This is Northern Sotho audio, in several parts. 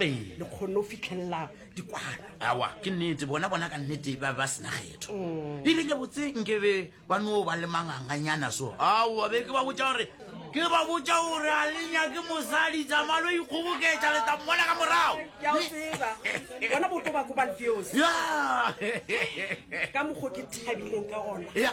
Ee. le kgonne go fitlhelela dikwana awa ke nnete bona bona ka nnete ba ba sena kgetho Mm. e bile botse nke be ba no ba le manganganyana so awa be ke ba botsa gore ke ba botsa gore a le nyake mosadi tsamalo ikgoboketsa le tla mmona ka morago ke a o tseba bona boto ba ko balfeos ya ka mokgo ke thabileng ka gona ya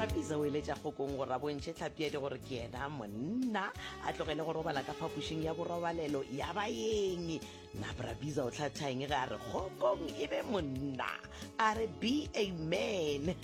rapisa o eletša kgokong gore a bontšhe tlhapiadi gore ke yena monna a tlogele go robala ka phapošing ya borobalelo ya baeng na brabisa o tlhathang ge a re kgokong e be monna a re be amen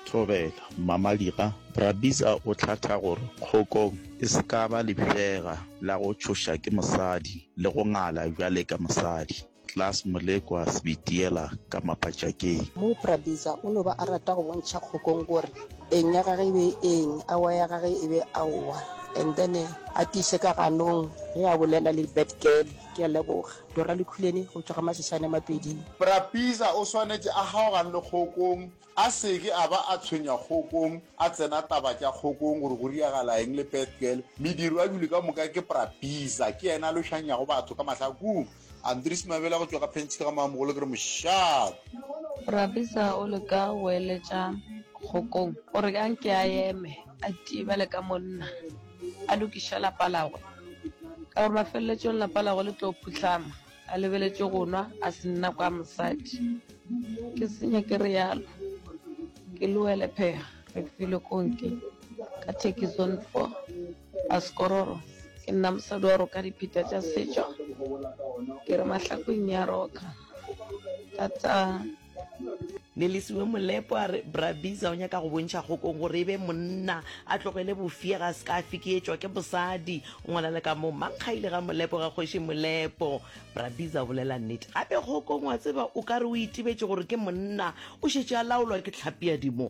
thobela mmamadira brabisa o tlhatha gore kgokong e se ka ba lefšega la go tšhoša ke mosadi le go ngala bjale ka mosadi Klaas Molekwa Sibitiela ka Mapatšakeng. Mo Prabeza o no ba a rata go bontšha Kgokong gore eng ya gage e be e eng, aowa ya gage e be aowa, and then a tiiše ka ganong ge a bolela le bad girl. Ke a leboga. Dora Lekhuleni go tšwa ga Masesane Mapeding. Prabeza o swanetše a kgaogane le Kgokong, a se ke a ba a tshwenya Kgokong, a tsena taba tša Kgokong gore go riagala eng le bad girl. Mediro a bile ka moka ke Prabeza, ke yena a lošanyago batho ka mahlakong. Andries Mabela go tšwa ka Pench ka ga Maamogolo ke re mošate. Rabisa o le ka go eletša kgokong gore ka nke a eme a tie bale ka monna a lokiša lapa lagwe ka gore mafelletšong lapa lagwe le tlo phuhlama a lebeletše go nwa a se nna kwa mosadi ke senya ke re yalo ke loele phega re file konke ka thekison four Askororo, Ke nna mosadi wa roka dipheta tša setšo, ke re mahlakweng ya roka thata. Nelisiwe Molepo a re, Bra Biza o nyaka go bontšha kgokong gore e be monna, a tlogele bofega, a se ka a fikietšwa ke bosadi. O ngwala le ka mo, Mankgaile ga Molepo ga Kgoši Molepo. Bra Biza o bolela nnete. Gape kgokong, wa tseba, o ka re o itebetše gore ke monna, o šetše a laolwa ke tlhapi ya dimo.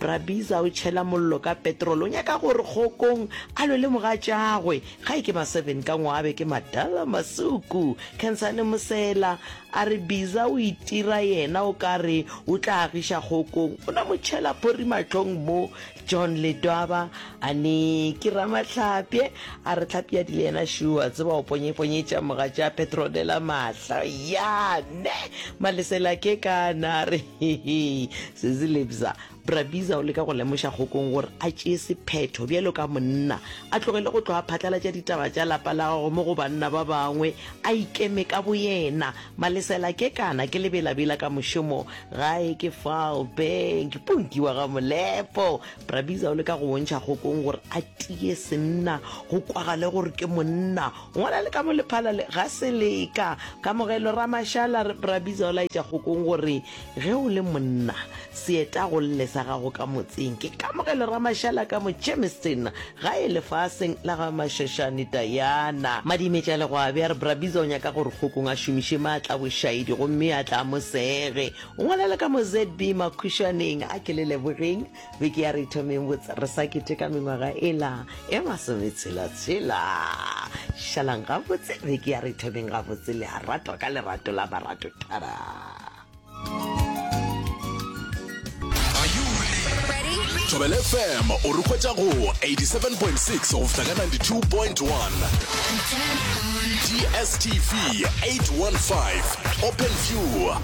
Rabiza o tšhela mollo ka petrol, o nyaka gore Kgokong a lwe le mogatšagwe. Gae ke maseven ka ngwabe, ke madala masuku. Khensane Mosela a re Biza o itira yena o ka re o tla agiša Kgokong, o na mo tšhela phori mahlong mo. John Ledwaba a ne ke Ramahlapye a re Hlapyadi le yena šo a tseba o ponyeponyetša mogatša Petronella mahla. Yaa neh! Malesela ke ka na a re Hehe, sesi Lebza, Bra Biza o leka go lemoša Kgokong gore a tšee sephetho bjalo ka monna, a tlogele go tloga phatlalatša ditaba tša lapa la gago mo go banna ba bangwe, a ikeme ka boyena. Malesela ke kana ke lebelabela ka mošomo, gae ke fao, Bank, Punki wa ga Molepo. Bra Biza o leka go bontšha Kgokong gore a tie senna, go kwagale gore ke monna. Ngwana le ka mo lephala le ga se leka. Kamogelo Ramashala re Brabiza o laetša kgokong gore ge o le monna se eta go lle sa gago ka motseng. Ke Kamogelo Ramashala ka mo Germiston gae lefaseng la ga Mashoshane Diana. Madimetša-legwabe a re Brabiza o nyaka gore kgokong a šomiše maatla a bošaedi gomme a tle a mo sege. Ngwana le ka mo ZB Makhushaneng a ke le lebogeng. Beke ya re ithomeng botse re sa keteka mengwaga ela e masometshela-tshela. Šalang gabotse, beke ya re ithomeng gabotse le a ratwa ka lerato la barato. Tada! Thobela FM o re hwetša go 87.6 go fihla ka 92.1. DSTV 815 Open View.